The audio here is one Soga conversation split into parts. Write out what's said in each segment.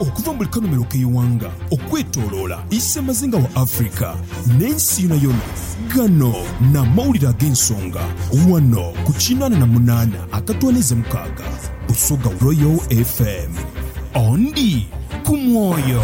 Okuva mu buli kanhumilo k'eighanga okwetoloola isemazinga wa Africa n'ensi yonayona, ghano n'amawulire ag'ensonga ghano ku kinaana na munaana akatwaniiza mukaaga Busoga Royal FM. Ondi ku mwoyo.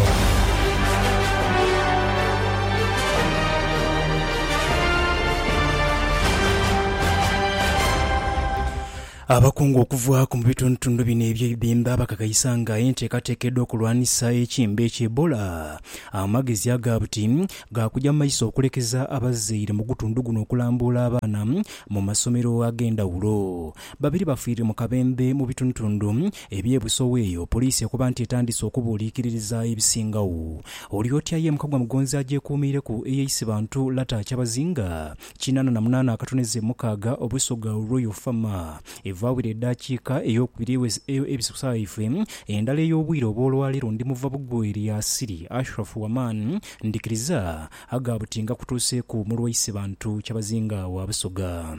Abakungu okuva ku mu bitundutundu bina eby'eibemba bakakaisa nga enteekateeka edh'okulwanisa ekimbe ki Ebola amagezi aga buti ga kuja mu maiso okulekeza abazaire mu gutundu guno okulambuula abaana mu masomero ag'endhawulo. Babiri bafiire mu kabembe mu bitundutundu eby'e Busowa eyo poliisi ekoba nti etandise okubuuliikiririza ebisingagho. Olyoti aye Mukagwa Mugonzi agyekuumiireku eyeise bantu Lata Kyabazinga Kinaana na munaana akatone ze mukaaga obwiso ga Royal Fama. Evaawira edaakiika ey'okubiri eweze eyo ebisosaife. Endala ey'obwire obw'olwaleero ndi muva bugwe eri Asiri, Ashraf Waman. Ndhikiriza, agha buti ngakutuuseeku mu lwaise bantu kyabazinga wa Busoga.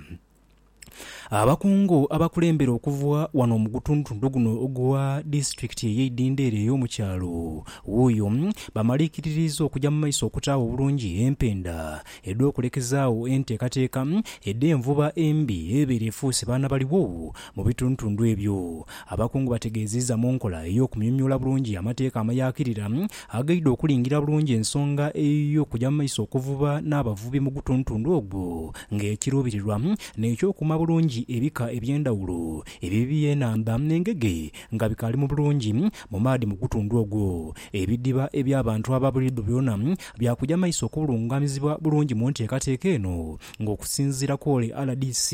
Abakungu abakulembere okuva wano mu gutundhutundu guno ogwa disitulikiti eye Idhindho ere eyomu kyalo Wuuyo bamaliikiririiza okuja mu maiso okutaagho obulungi empenda edh'okulekezaagho enteekateeka edh'envuba embi ebeera efuuse baana baligho mu bitundhutundu ebyo. Abakungu bategeeziiza mu nkola ey'okumyumyula bulungi amateeka amayakirira Aghaidha okulingirira bulungi ensonga ey'okugya mu maiso okuvuba n'abavubi mu gutuntundu ogwo nga ekiruubirirwa n'eky'okuuma bulungi ebika eby'endhawulo ebyo eby'enhandha engege nga bikaali mu bulungi mu maadhi mu gutundu ogwo. Ebidiba eby'abantu aba buliidho byona bya kugya maiso okubulungamizibwa bulungi mu nteekateeka eno nga okusinziira kw'ole rdc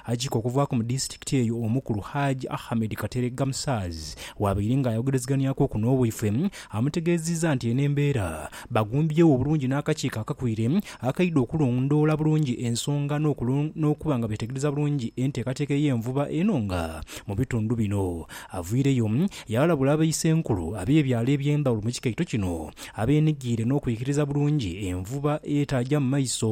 ajiika okuvaaku mu disitulikiti eyo omukulu Hajj Ahmed Kateregga Musaaz waabaire nga ayogerezeghanyaku oku n'owaifwe amutegeeziiza nti eno embeera bagumbyewo obulungi n'akakiiko akakwire akaidha okulondoola bulungi ensonga n'okuba nga beetegereza bulungi enteekateeka ey'envuba eno nga mu bitundu bino avwireyo yaalabula abaisenkulu ab'ebyalo eby'endhawulo mu kikaito kino abeenigiire n'okwikiriza bulungi envuba etaaja mu maiso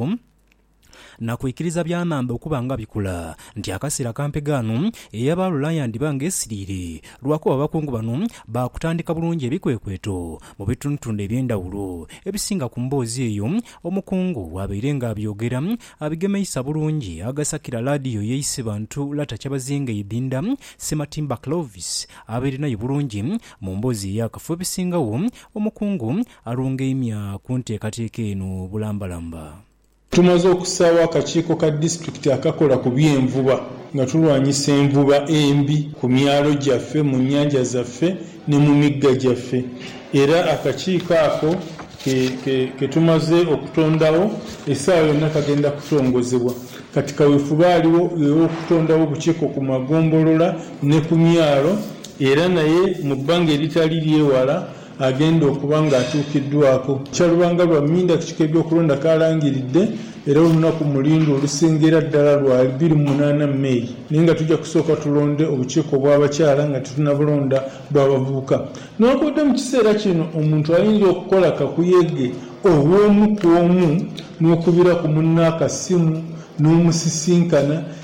na kwikiriza bya nhandha okuba nga bikula, nti akasiira kampe ghano eyaba alula yandhiba nga esiriire, lwakuba abakungu bano baakutandika bulungi ebikwekweto mu bitundhutundhu eby'endhawulo. Ebisinga ku mboozi eyo omukungu bw'abaire nga abyogera, abigemeisa bulungi aghasakira laadiyo ye Isebantu Lata Kyabazinga Edinda Ssematimba Clovis abeere nayo bulungi mu mboozi eya kafu. Ebisingagho omukungu Alungaimya ku nteekateeka eno bulambalamba. Tumaze okusaawo akakiiko ka disitulikiti akakola ku by'envuba nga tulwanyisa envuba embi ku myalo gyaffe, mu nnyanja zaffe ne mu migga gyaffe era akakiiko ako ke tumaze okutondagho esaawa yonna kagenda kutongozebwa. Kati kawefube aligho ghe w'okutondagho obukiiko ku magombolola ne ku myalo era naye mu bbanga eritali ly'ewala agenda okuba ng'atuukiddwaako. Kyalubanga lwa mindakiti k'ebyokulonda kaalangiridde era olunaku mulindwe olusingira ddala lwa ibiri mu munaana May naye nga tujja kusooka tulonde obukiiko obw'abakyala nga titunabulonda bw'abavubuka. Newankubadde mu kiseera kino omuntu ayinza okukola kakuyege ow'omu ku omu n'okubira ku munne akasimu n'omusisinkana,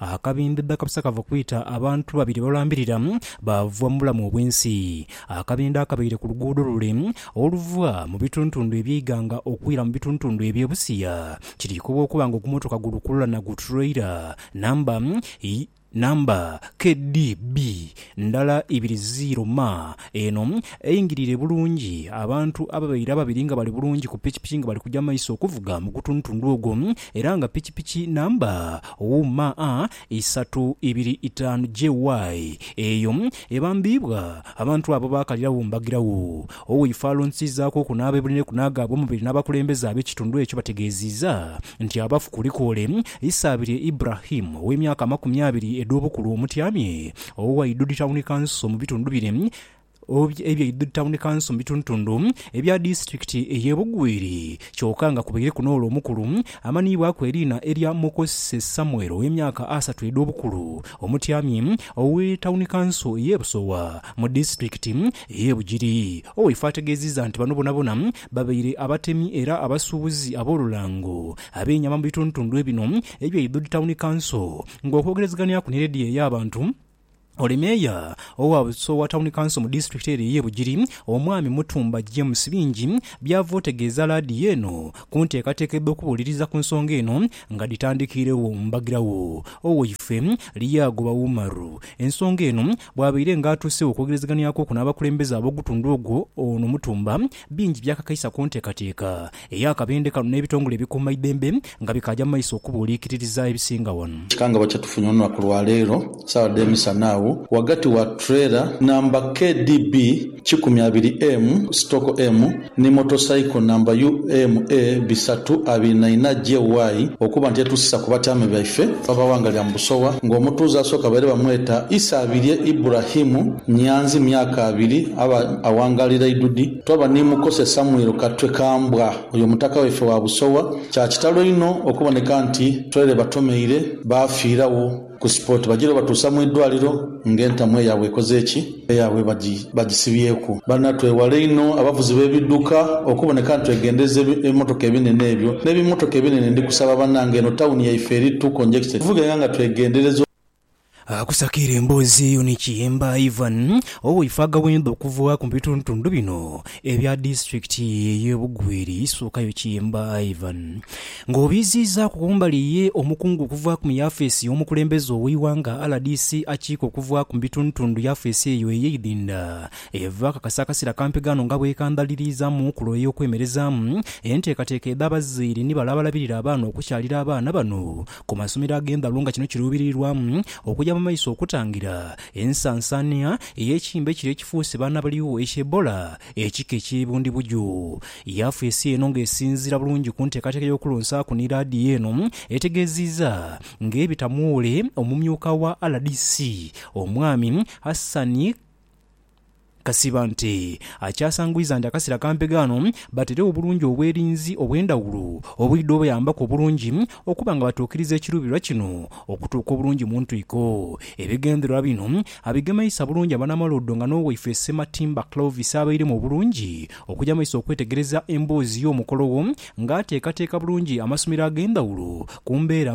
Akabindha dhakapisa kava kwita abantu babiri balambirira baava mu bulamu obw'ensi. Akabindha akabaire ku luguudo lule oluva mu bituntundu eby'eighanga okwira mu bituntundu eby'e Busia. Kiriikobwa okuba nga ogumotoka gulukululana gu tureira namba namba KDB ndala ibiri ziiro ma Eno eingirire bulungi abantu ababaire ababiri nga bali bulungi ku pikipiki nga bali kuja mu maiso okuvuga mu gutundutundu ogwo era nga pikipiki namba UMA isatu ibiri itaanu JY eyo ebambiibwa abantu abo baakaliragho mbagiragho. Oweifo alonsiizaaku oku n'abeebuliraiku n'agaabwe omubiri n'abakulembeze ab'ekitundu ekyo bategeeziiza nti abafu kulikoole Isaabirye Ibrahim ow'emyaka amakumi abiri edh'obukulu omutyamye Owa Idudi Tawuni Kanso mu bitundu bire ebya Idudi Tawuni Kanso mu bitundutundu ebya disitulikiti ey'e Bugwiri kyoka nga kubaireku n'ole omukulu amanhiibwaku eriina erya Mukose Samuel ow'emyaka asatu edh'obukulu omutyamyi owe Tawuni Kanso ey'e Busowa mu disitulikiti ey'e Bugiri. Owaife ategeezizza nti bano bonabona babaire abatemi era abasuubuzi ab'olulango ab'enyama mu bitundutundu bino ebya Idudi Tawuni Kanso Ng'okwogerezeganyaku ni leediyo ey'abantu, oli meeya owa Buso owa tawuni kanso mu disitulikiti eno ey'e Bugiri, Omwami Mutumba James bingi by'ava otegeeza laadiyo eno ku nteekateeka edh'okubuuliriza ku nsonga eno nga dhitandikiiregho mbagirawo Oweyife Lyagoba Umaru ensonga eno bw'abaire nga atuuseegho okwogerezeganyaku okwo n'abakulembeze ab'ogutundu ogwo Ono Mutumba bingi by'akakaisa ku nteekateeka Eyo akabendhe kano n'ebitongole ebikuumaidembe nga bikaaja mu maiso okubuuliikiririza ebisinga wano. Kikangabwa kyetufunye olunaku lwa leero saagha dh'emisana agho ghagati wa trailer namba KDB kikumi abiri M stock M ni motorcycle namba UMA bisatu abiri na inha JY okuba nti etuusisa ku batyaame baife bava ghanga lya mu Busowa nga omutuuze asooka baire bamweta Isabirye Ibrahim Nyanzi myaka abiri aba awangaalira Idudi Twaba ni mukose Samuel Katwe Kambwa, oyo mutaka waife wa Busowa. Kya kitalo inho okuboneka nti twere batomeire baafiiragho ku spot. Bagira obatuusa mu idwaliro nga entamu eyaabwe ekoze ki? Eyaabwe bagisibyeku. Banna twewale inho abavuzi b'ebiduka okuboneka nti twegendereza ebimotoka ebinene ebyo n'ebimotoka ebinene. Ndi kusaba banange eno tawuni yaife eri too congested tuvugenga nga twegendereza. Akusakiire emboozi eyo ni kiyemba Ivan owoifa agawenda okuva ku bitundutundu bino ebya disiturikiti eye Bugweri sookayo kiyemba Ivan nga obiiziizaaku kumbali ye omukungu okuva ku yafeesi yomukulembeze oweighanga rdc akiika okuva ku bitundutundu yafeesi eyo eyeidinda eva kakasa akasera kampi ghano nga bwekandhaliriizamu kulo eyokwemerezaamu enteekateeka edha bazaire ni bale abalabirira abaana okukyalira abaana bano ku masomero ag'endhaghulo nga kino kiruubirirwamu okuja mu maiso okutangira ensansaania ey'ekimbe kire ekifuuse baana baligho ekya Ebola, ekika eky'e Bundibugyo. Yaafu ensi eno nga esinziira bulungi ku nteekateeka y'okulonsaaku ni laadiyo eno etegeeziiza nga ebitamuwoole omumyuka wa rdc omwami Hassan Kasiba nti akyasangwiza nti akasera kampe ghano baterewo obulungi obwerinzi obwendhawulo obwidha obayambaku obulungi okuba nga batuukiriza ekiruubirirwa kino okutuuka obulungi mu ntwiko. Ebigendererwa bino abigemeisa bulungi abanamaloodho nga n'owaife Ssematimba Clovis abairemu obulungi okuja mu maiso okwetegereza emboozi y'omukolo ogho nga ateekateeka bulungi amasomero ag'endhawulo ku mbeera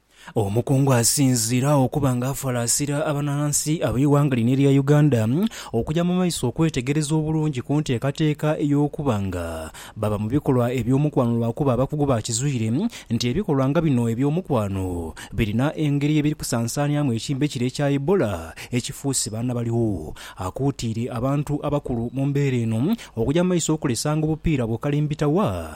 Omukungu asinziire agho okuba nga afalaasira abanansi ab'eighanga lino erya Uganda okuja mu maiso okwetegereza obulungi ku nteekateeka ey'okuba nga baba mu bikolwa eby'omukwano lwakuba abakugu baakizwire nti ebikolwa nga bino eby'omukwano birina engeri ye biri kusansaaniamu ekimbe kire ekya Ebola ekifuuse baana baligho. Akuutiire abantu abakulu mu mbeera eno okuja mu maiso okulesanga obupiira bwo kalimbitawa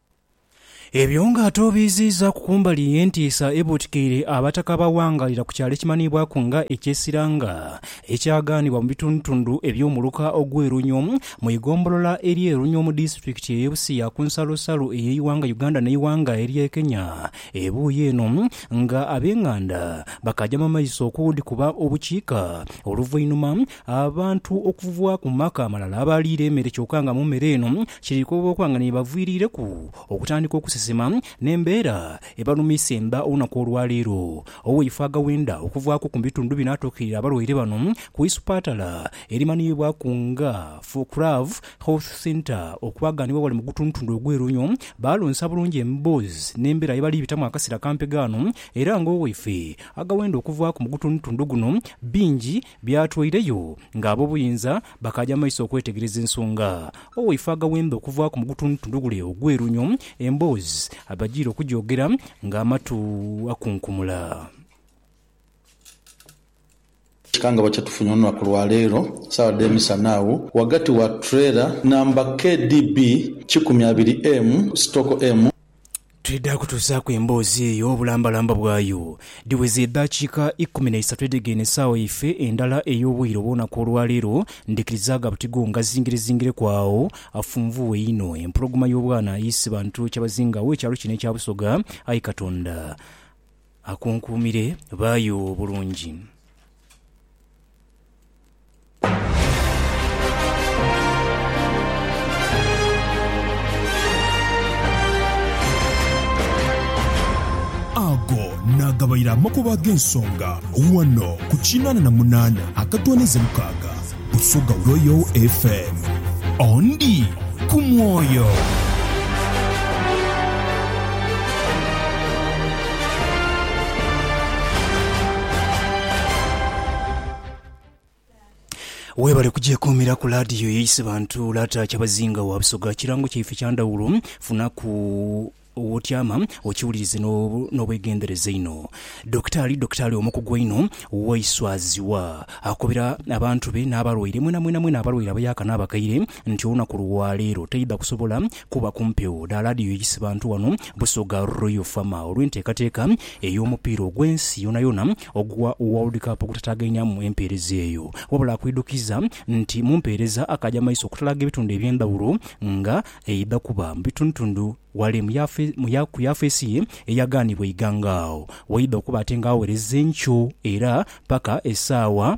Ebyo nga ate obiiziizaaku ku mbali ey'entiisa ebuutikaire Abataka ba Wangalira ku kyalo ekimanhiibwaku nga eky'e Siranga ekyagaanibwa mu bitundutundu eby'omuluka ogw'e Runyo mu igombolola ery'e Runyo mu disitulikiti ey'e Busia ku nsalosalo ey'eighanga Uganda n'eighanga ery'e Kenya ebuuyi eno nga ab'enganda bakaajama maiso okudhikuba obukiika oluvainhuma Abantu okuva ku maka amalala abaliira emere kyoka nga mu mere eno kiri kukoba okuba nga n'ebaviiriireku okutandika okusesema n'embeera ebalumisa emba olunaku olwaleero. Oweife agawenda okuvaaku ku bitundu bino atuukirira abalwaire bano ku isupatala erimanhiibwaku nga Fookrav Health Centre okulaga ni webali mu gutundutundu ogwe Runyo balonsa bulungi emboozi n'embeera yebali bitamu akasera kampe ghano era nga oweife agawenda okuvaaku mu gutundutundu guno bingi Byatwaireyo nga ab'obuyinza bakaaja maiso okwetegereza ensonga. Owaife agaghembe okuvaaku mu gutundhutundhugule ogw'erunyo, emboozi abajiire okujoogera nga amatu akunkumula. Ekikangabwa kye tufunye olunaku lwa leero sawa dhe misana agho ghagati wa trailer namba KDB kikumi abiri M sitoko M, Twidha kutuusaaku emboozi eyo obulambalamba bwayo. Dhiweze edaakiika ikumi na isatu edhegeenhe esaawa yaife endala ey'obwire obw'olunaku olwaleero, ndhikirizaaga buti gho ngazingirezingireku agho afunvuwe inho empologoma y'obwana ye Isibantu Kyabazinga ow'ekyalo kino ekya Busoga. Ayi Katonda akunkuumire, baayo bulungi. Ago naagabaire amakubo ag'ensonga ghano ku kinaana na munaana akatwanize mukaaga Busoga Royal FM. Ondi ku mwoyo. Webale kugyekuumiraku laadiyo y'eisi bantu Lata Kyabazinga wa Busoga kirango kyaife kya ndhawulo funaku wotyama okiwulirize n'obwegendereza einho. Dokitaali Dokitaali omukugu einho Waiswazibwa akobera abantu be n'abalwaire mwena mwena mwena abalwaire abayaaka n'abakaire nti olunaku lwa leero taidha kusobola kuba ku mpewo dha laadiyo y'eisi bantu wano Busoga Royal Fama olw'enteekateeka ey'omupiira ogw'ensi yonayona Ogwa World Cup ogutataagainhamu empeereza eyo, wabula akwidukiza nti mu mpeereza akaaja mu maiso okutalaaga ebitundu eby'endhawulo nga eidha kuba mu bitundutundu ghale mu yafe mu ya ku yafeesi ye eyagaanibwa eighanga agho waidha okuba ate nga aghawereza enkyo era paka esaawa